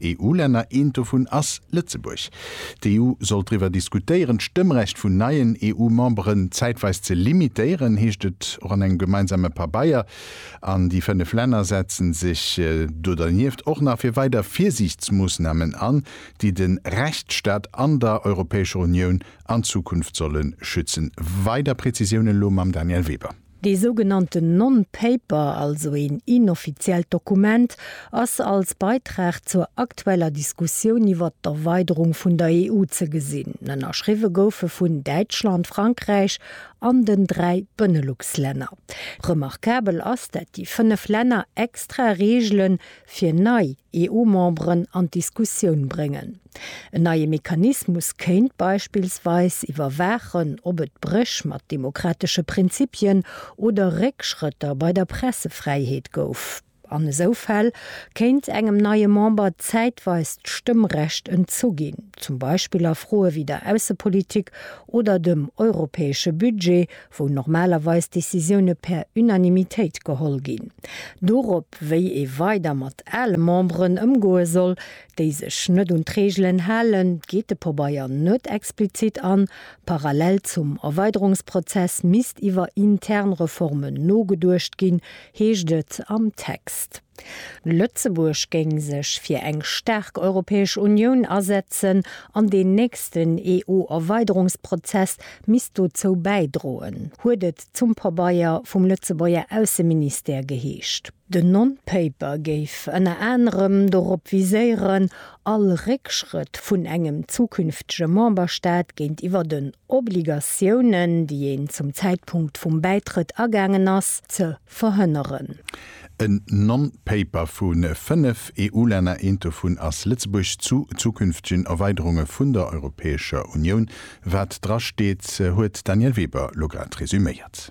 EU-Länner. Eent dovun ass Lëtzebuerg. D'EU soll driwwer diskutéieren, d'Stëmmrecht vun neien EU-Memberen zäitweis ze limitéieren, heescht et och an engem gemeinsame Pabeier. An déi fënnef Länner setzen sech do dernieft och nach fir weider Virsiichtsmoossnamen an, déi de Rechtsstaat an der Europäescher Unioun an Zukunft solle schützen. Weider Präzisiounen elo mam Danièle Weber. Dee sougenannten Non-Paper, also een inoffiziellt Dokument, ass als Beitrag zur aktueller Diskussioun iwwert d'Erweiderung vun der EU ze gesinn. Ënnerschriwwe gouf e vun Däitschland, Frankräich an den dräi Benelux-Länner. Remarkabel ass, dat déi fënnef Länner extra Reegele fir nei EU-Memberen an d'Diskussioun bréngen. En neie Mechanismus kéint beispillsweis iwwerwaachen, ob et Bréch mat demokratesche Prinzipien oder Réckschrëtter bei der Pressefräiheet gouf. An esou Fäll kéint engem neie Member zäitweis d'Stëmmrecht entzu ginn, zum Beispill a Froe wéi der Aussepolitik oder dem europäesche Budget, wou normalerweis Decisioune per Unanimitéit geholl ginn. Dorop, wéi ee weider mat ale Memberen ëmgoe soll, déi sech net un d'Reegelen halen, geet de Pobeier net explizit an. Parallel zum Erweiderungsprozess misst iwwer intern Reformen nogeduecht ginn, heescht et am Text. Lëtzebuerg géing sech fir eng staark Europäesch Unioun asetzen an deen nächsten EU-Erweiderungsprozess misst dozou bäidroen, huet et zum Pabeier vum Lëtzebuerger Ausseministère geheescht. Den Non-Paper géif ënner anerem dorop viséieren, all Réckschrëtt vun engem zukünftege Memberstaat géintiwwer den Obligatiounen, déi een zum Zäitpunkt vum Bäitrëtt agaangen ass, ze verhënneren. En Non-Paper vu fënnef EU-Länner, eent dovun ass Lëtzebuerg, zu zukünftegen Erweiderunge vun der Europäescher Unioun, wat drasteet, huet d'Danièle Weber lo grad resuméiert.